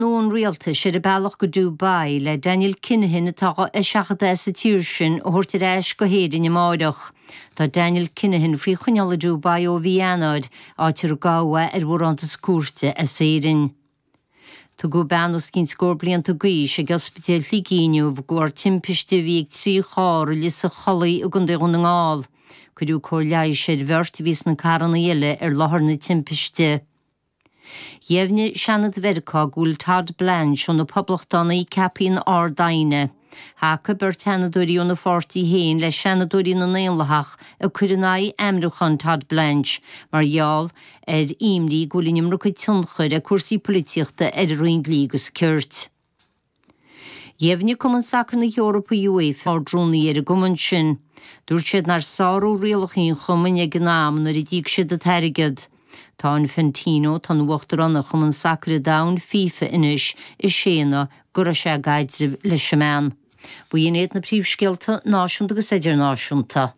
nua an rialtais, ar a bealach go Dubai le Daniel Kinahan atá á eiseachadadh as an tír sin a thabhairt ar ais go hÉirinn amárach. Tá Daniel Kinahan faoi choinneáil i Dubai ó mhí Eanáir, áit ar gabhadh ar bharántas cúirte as Éirinn. Tugadh bean os cionn scór blianta d'aois ag Ospidéal Shligigh inniu de bharr timpiste a bhí ag trí charr i Lios an Chollaigh i gContae Dhún na nGall. Cuireadh cóir leighis ar bheirt a bhí sna carranna eile ar láthair na timpiste. Dheimhnigh Seanad Mheiriceá go bhfuil Todd Blanche ó na Poblachtánaigh ceaptha ina Ard-Aighne. Thacaigh beirt sheanadóirí óna pháirtí féin le seanadóirí na nDaonlathach ag cur in aghaidh ainmniúchán Todd Blanche mar gheall ar imní go bhfuil an iomarca tionchair ag cúrsaí polaitíochta ar an Roinn Dlí agus Cirt. Dheimhnigh Cumann Sacair na hEorpa, UEFA, Ard-Rúnaí ar an gcumann sin. Dúirt siad nár sáraíodh rialacha an chumainn ag an am nuair a d'íoc siad an t-airgead. Tá Infantino, atá ina uachtarán ar Chumann Sacair an Domhain, FIFA, anois, ag séanadh go raibh sé i gcaidreamh leis an mbean. B'in iad na príomhscéalta náisiúnta agus idirnáisiúnta.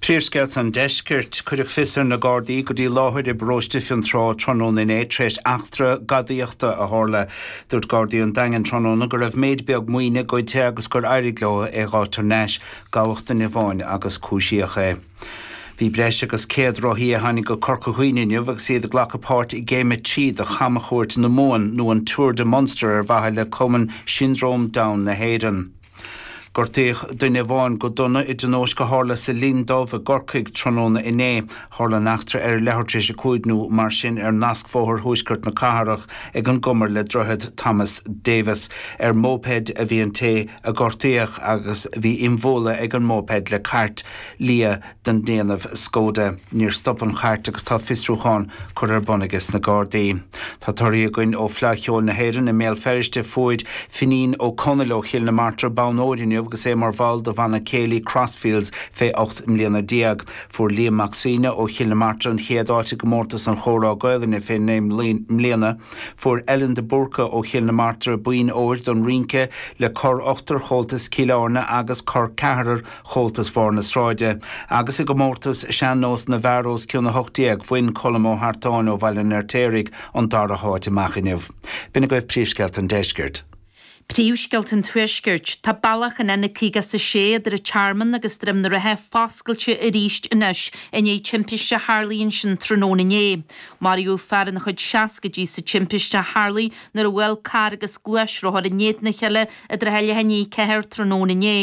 Príomhscéalta an Deiscirt. Cuireadh fios ar na Gardaí go dtí láthair i bparóiste Fionntrá tráthnóna inné tar éis eachtra gadaíochta a tharla. Dúirt Gardaí an Daingin tráthnóna go raibh méid beag maoine goidte agus gur éirigh leo é a dh'fháil thar n-ais. Gabhadh duine amháin agus cúisíodh é. Bhí breis agus 100 rothaí a tháinig go Corca Dhuibhne inniu agus iad ag glacadh páirt i gCéim 3 de chamchuairt na Mumhan nó an Tour de Munster ar mhaithe le Cumann Siondróm Down na hÉireann. Gortaíodh duine amháin go dona i dtionóisc a tharla sa Linn Dubh i gCorcaigh tráthnóna inné. Tharla an eachtra ar a leathuair tar éis a cúig nó mar sin ar nascbhóthar thuaisceart na cathrach ag an gcumar le Droichead Thomas Davis. Ar mhóipéid a bhí an té a gortaíodh agus bhí imbhualadh ag an móipéid le cairt liath. den ndéanamh Skoda. Níor stop an chairt agus tá fiosrúchán curtha ar bun aiges na Gardaí. Tá torthaí againn ó Fleadh Cheoil na hÉireann i mBéal Feirste. Fuair Finín Ó Conaill ó Chill na Martra bonn óir inniu agus é mar bhall do bhanna céilí Crossfields fé 18 mbliana. Fuair Liam Mac Suibhne ó Chill na Martra an chéad áit i gcomórtas an Chomhrá Gaolainne fé 9 mbliana. Fuair Ellen de Búrca ó Chill na Martra boinn óir don rínce le Cor Ochtair Chomhaltas Cill Airne agus Cor Ceathrair Chomhaltas Bharr na Sráide, agus i gcomórtas Sean-Nós na bhFear os cionn 18, bhain Colm Ó hArtáin ó Bhaile an Fheirtéaraigh an dara háit amach inniu. B'in agaibh Príomhscéalta an Deiscirt. Príomhscéalta an Tuaiscirt. Tá bealach an N56 idir an Tearmann agus Droim na Rátha foscailte arís anois i ndiaidh timpiste a tharlaigh ansin tráthnóna inné. Maraíodh fear ina chuid seascaidí sa timpiste a tharlaigh nuair a bhuail carr agus gluaisrothar in éadan a chéile i dtrátha leath i ndiaidh a ceathair tráthnóna inné.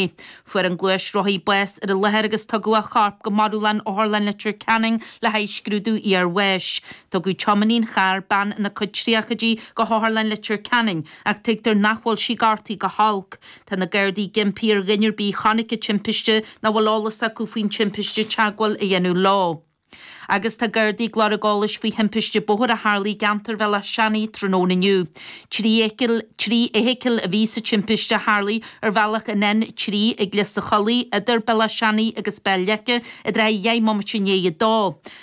Fuair an gluaisrothaí bás ar an láthair agus tugadh a chorp go marbhlann Otharlann Leitir Ceanainn le haghaidh scrúdú iarbháis. Tugadh tiománaí an chairr, bean ina cuid tríochaidí, go hOtharlann Leitir Ceanainn ach tuigtear nach bhfuil sí gortaithe go holc. Tá na Gardaí ag impí ar dhuine ar bith a chonaic an timpiste nó a bhfuil eolas acu faoin timpiste teagmháil a dhéanamh leo. Agus tá Gardaí ag lorg eolais faoi thimpiste bóthair a tharla i gceantar Bhéal Átha Seanaidh tráthnóna inniu. Trí fheithicil a bhí sa timpiste a tharlaigh ar bhealach an N3 ag Lios a' Chollaigh idir Béal Átha Seanaidh agus Béal Leice i dtráthaí dheich mbomaite i ndiaidh a dó.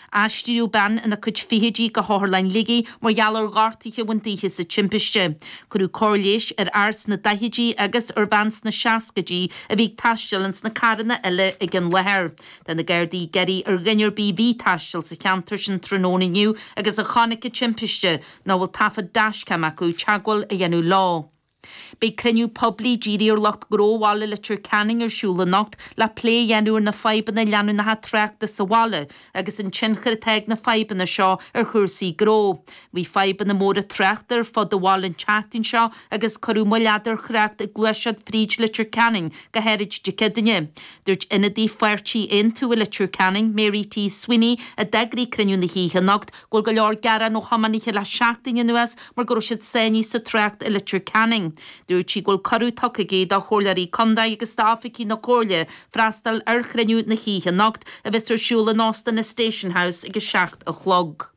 Aistríodh bean ina cuid fichidí go hOtharlann Shligigh mar gheall ar ghortuithe a bhain dithe sa timpiste. Cuireadh cóir leighis ar fhear sna daichidí agus ar bhean sna seascaidí a bhí ag taisteal ins na carranna eile ag an láthair. Tá na Gardaí ag iarraidh ar dhuine ar bith a bhí ag taisteal sa cheantar sin tráthnóna inniu agus a chonaic an timpiste, nó a bhfuil taifead dashcam acu, teagmháil a dhéanamh leo. Beidh cruinniú poiblí dírithe ar lucht gnó bhaile Leitir Ceanainn ar siúl anocht le plé a dhéanamh ar na fadhbanna leanúnacha tráchta sa bhaile agus an tionchar atá ag na fadhbanna seo ar chúrsaí gnó. Bhí fadhbanna móra tráchta ar fud an bhaile an tseachtain seo agus cuireadh moill fhada ar thrácht ag gluaiseacht fríd Leitir Ceanainn go háirid Dé Céadaoine. Dúirt ionadaí pháirtí Aontú i Leitir Ceanainn, Mary T. Sweeney, a d'eagraigh cruinniú na hoíche anocht, go bhfuil go leor gearán ó thiománaithe le seachtain anuas mar go raibh siad sáinnithe sa trácht i Leitir Ceanainn. Dúirt sí go bhfuil cuireadh tugtha aici do Chomhairleoirí Contae agus d'oifigigh na Comhairle freastal ar chruinniú na hoíche anocht, a bheas ar siúl in Óstán an Station House ag a seacht a chlog.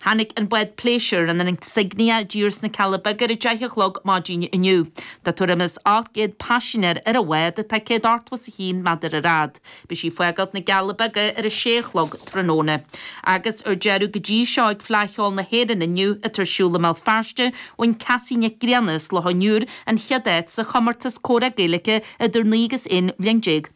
Tháinig an bád pléisiúir, an Insignia, i dtír sna Cealla Beaga ar a deich a chlog maidin inniu. Tá tuairim is 800 paisinéir ar an bhád, atá 181 méadar ar fhad. Beidh sí ag fágáilt na gCealla Beaga ar a sé a chlog tráthnóna. Agus ar deireadh, go dtí seo ag Fleadh Cheoil na hÉireann inniu, atá ar siúl i mBéal Feirste, bhain Cassie Nic Grianna as Loch an Iúir an chéad áit sa chomórtas comhrá Gaeilge idir naoi agus aon bhliain déag.